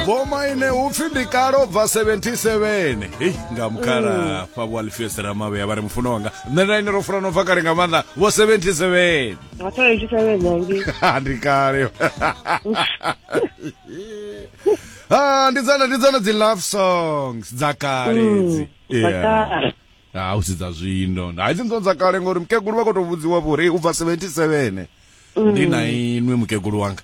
vhomaine upfi ndi kale ubva 77 hei nga mukhala fha vho alfios ramavheya vha ri mufuno wanga nṋe nda ine ro fulana ubva kale nga maanḓa vho 77 ndi kale Ah, ndi dzone ndi dzone dzi love songs dza kale mm, dzi yeah ha ah, u si dza zwino ha idzi ndzo dza kale ngori mukegulu vha khou tou vhudziwa vho ri u bva 77 mm. ndi na inwi mukegulu wanga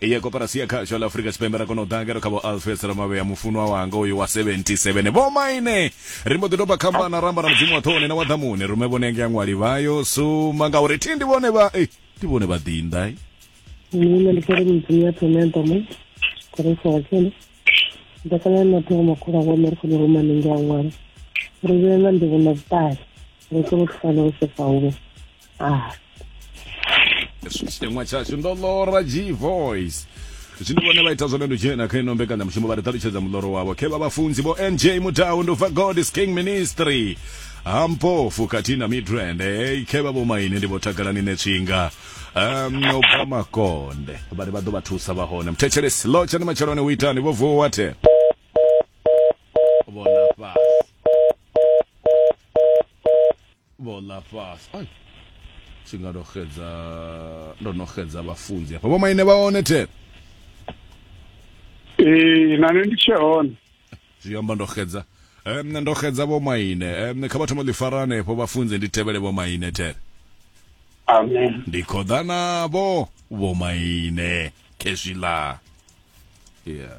ya koporasi ya khasho ḽa afurika tshipembe ra kona u ḓa ngeno kha vho alfes ramavhea mufunwa wanga uyu wa 77 vho maine ri mbo ḓi doba khambana ramba na mudzimu wa ṱhoni na wa ḓamuni rume vhone nge aṅwali vhayo suma ngauri thi ndi vhone vha eh, ndi vhone vha ḓinḓa eh. nṋe ndi kere mudzimu ya ṱhoni ya ḓamuni koresa wa tshene nda kana na ṱhogo makhulu a wone ri khone rumane nge aṅwali ri vhee na ndivho na vhuṱali ri kone u thusana u sefa huwe ah. hezwi tshiteṅwa tshashu ndo lora g voice zwino vhone vha ita zwone ndutshena kha ino mbekanyamushumo vha ri ṱalutshedza muḽoro wavho khe vha vhafunzi vho nj mudau nduva god is king ministry hampofu khathihi na midrand hey, khe vha vhomaini ndi vho takalani netswinga um no bva makonde vha ri vha ḓo vha thusa vha hone muthetshelesi lo tshani matsheloni u itani vho vuwa wathe vhona fhasi vho ḽa fhasi ai tshi nga ndo xedza ndo no xedza vhafunzi hafha vho maine vha hone the ee na nṋe ndi tshe hone zwi amba ndo xedza um ndo xedza vho maine um kha vha thoma ḽi fara hanefho vhafunzi ndi tevhele vho maine the amen ndi khoḓa navho vho maine khezwiḽa yeah